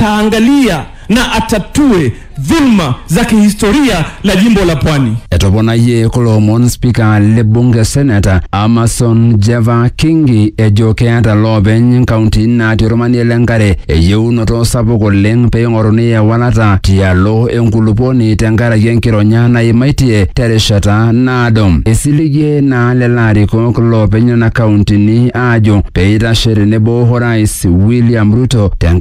ataangalia na atatue dhulma za kihistoria la jimbo la Pwani. Etoponayie kulo omon spika le bunge seneta Amason Jeva Kingi ejo keeta loopeny nkaunti natii ormanie le nkare eyieunoto sapuk oleng pee ing'oruni ewalata tialo enkuluponi tenkaraki enkironya naimaitie terishata naado. Esiligie naa lelo arikok loopeny nena kauntini aajo pee eitashe tenebo orais William Ruto tenkaraki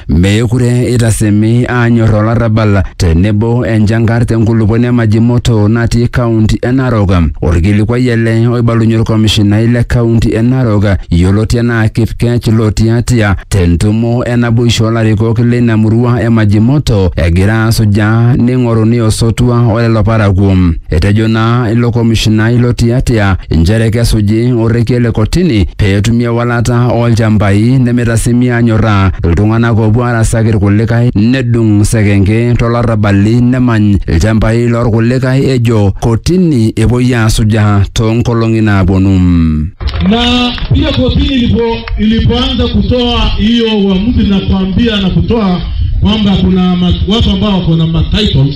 Meekure eitasemi aanyor olarrabal tenebo enchankar te nkulupuoni e Majimoto natii kaunti e Narok. Olkilikuai ele oibalunye olkomishinai le kaunti e Narok yioloti anaa Kipkech Lotiatia te ntumo e naboisho o larikok leina murua e Majimoto egira asujaa neing'oruni osotua o lelo parakuo. Etejo naa ilo komishinai lo tiatia inchere kesuji orrekie le kotini pee etumi ewalata oo lchambai nemeitasimi aanyorraa iltung'anak oopuo aarasaki ilkulikae nedung sekenke to larrabali nemany ilchambai loo lkulikae ejo kotini epuoi aasujaa too nkolong'i naapuonu. Na pia kotini ilipo, ilipoanza kutoa hiyo uamuzi na kuambia na kutoa kwamba kuna ma- watu ambao wako na ma titles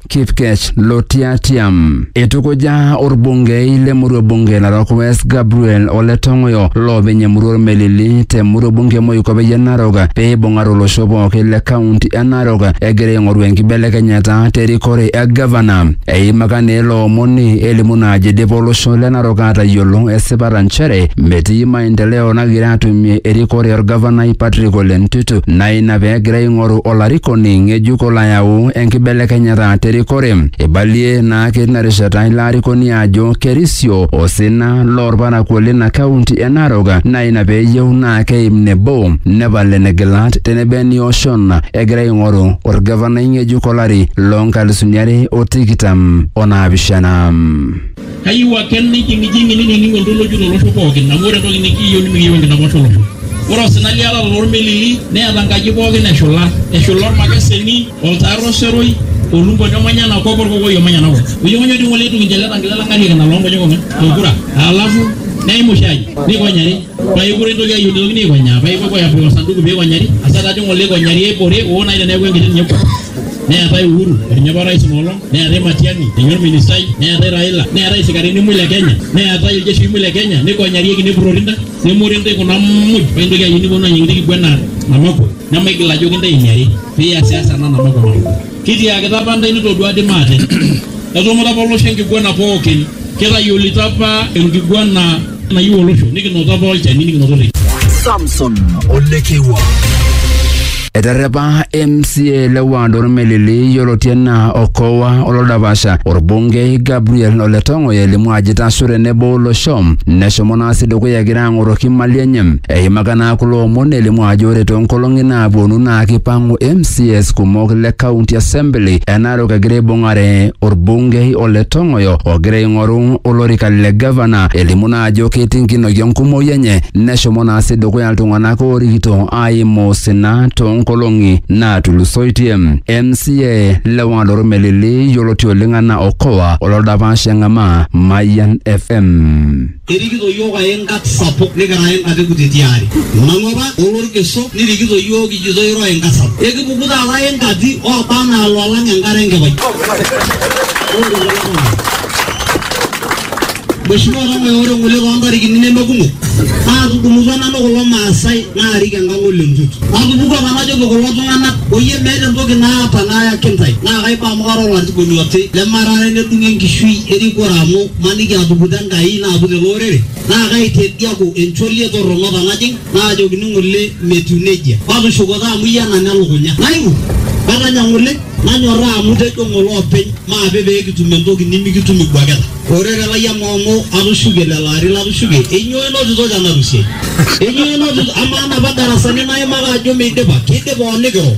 Kipkech Lotiatia. Eitukuja orbungei le murua bunge Narok West Gabriel Ole Tong'oyo loopeny emurua Ormelili te murua bunge Moikopeyie Narok pee eibung'are olosho pooki le kaunti e Narok egira aing'oru enkibelekenyata te rikore e gavana. Eimaka naa ilo omoni elimu naa ajo eidipa olosho le Narok aatayiolo esipata nchere metii maendeleo nagira atumie erikore orgavanai Patrick Ole Ntutu naa ina pee egira aing'oru olarikoni ng'ejuk olo ayau enkibelekenyata terikore. Eibalie naa tina rishata ilo arikoni ajo kerisio osina loolparakuo lina kaunti e Narok naa ina pee eyieu naa keim nebo nepal enegilat tenebo enioshon egira aing'oru olgavanai ng'ejuk olari loo nkalisuni are o tikitam o naapishana. Kayieu ake nijing'ijing'i ninining'u oltoloki tolosho pooki, amu ore entoki nikiyieu nimikiyieu enkidapash olosho. Ore osina liatata too lmelili neeta nkaji pooki eshula, eshula olmakeseni, oltaar o seroi, olumponi omanya ena kop o olkokoi omanya ena kop. Onyong'onyo dii ng'ole eitu kincho ele tankile lang ariak ina loo nkonyek ong'wan o lkura. Alafu neim oshi aji neikonyari paa kekure eitoki ayieu neitokini aikonyaa paa ipuopuo aapik osanduku pee eikonyari, asa taa dii ng'ole eikonyari eibore oo naaji teneaku enkiti ninye. neetae Uhuru etinye apa orais inoolong, neetae Matiang'i etinye orministai, neetae Raila, neetae isikarini mul le Kenya, neetae iljeshii mul le Kenya, nikonyarieki nepurrori ntae, nemori ntae kuna muj paa intoki ayieu niponu ayieng intae kipuo enaa Namako nemaigil ajoki intae emiari piasiasa ena Namako Namako. Kitiakita apa intae nitodua dii maate etumuta apa olosho enkiguana pookin, kitayiolito apa enkiguana nayieu olosho nikinoto apa olchani nikinoto te Samson Olekewa. Eterrepa MCA le ward Ormelili yioloti enaa Okowa Olodapasha orbungei Gabriel Ole Tong'oyo elimu ajo itasho tenebo olosho neshomo naa sii dukuya egira ang'oroki imali enye. Eimaka naa kulo omon elimu ajo ore toonkolong'i naapuonu naa kipang'u MCAs kumok le county assembly ena Narok egira aibung'are orbungei o le Tong'oyo ogira aing'oru olorika le gavana. Elimu naa ajo ketii nkinoki enkumoi enye neshomo naa sii dukuya iltung'anak oorikito aimu osina toonkolong'i naatulusoitie. MCA le Wang'ata Melili yioloti oleng anaa Okoa ololdapash eng'amaa Mayian FM. Erikito iyiook ae nkat sapuk nikira ae nkat kutiti aare. Nanu apa olorkeso nirikito iyiook kijito iro ae nkat sapuk. Ekipuku taata ae nkati ooba anaa loolang enkare enkipai. Mheshimiwa Ong'oe ore ng'ole too ntarikini neme kumok naatudumutua nanu kulo maasai naarik enkang ole Ntutu. Natupukuo apa najoki kulo tung'anak oyie meeta entoki naata nayaki intae naa kaiba amu kara olarikoni oti lemarare nedung'o enkishui erikore amu Maniki atuputa Enkai naaput ele orere, naa kaitediaku encholie torrono tenajing, naajokini ng'ole metiu nejia. Matushuko taa amu iyie enanya elukunya. Nairuk, natanya ng'ole, nanyorraa amu tejo ng'ole openy maape pee kitum entoki nimikitum ibwaketa. Orere lai amaa amu atushuke lelo arin latushuke, enyoo inotito tena rusiai? Enyoo inotito? Amaa napa darasani naimaka ajo meidipa? Keidipa oo nikiro?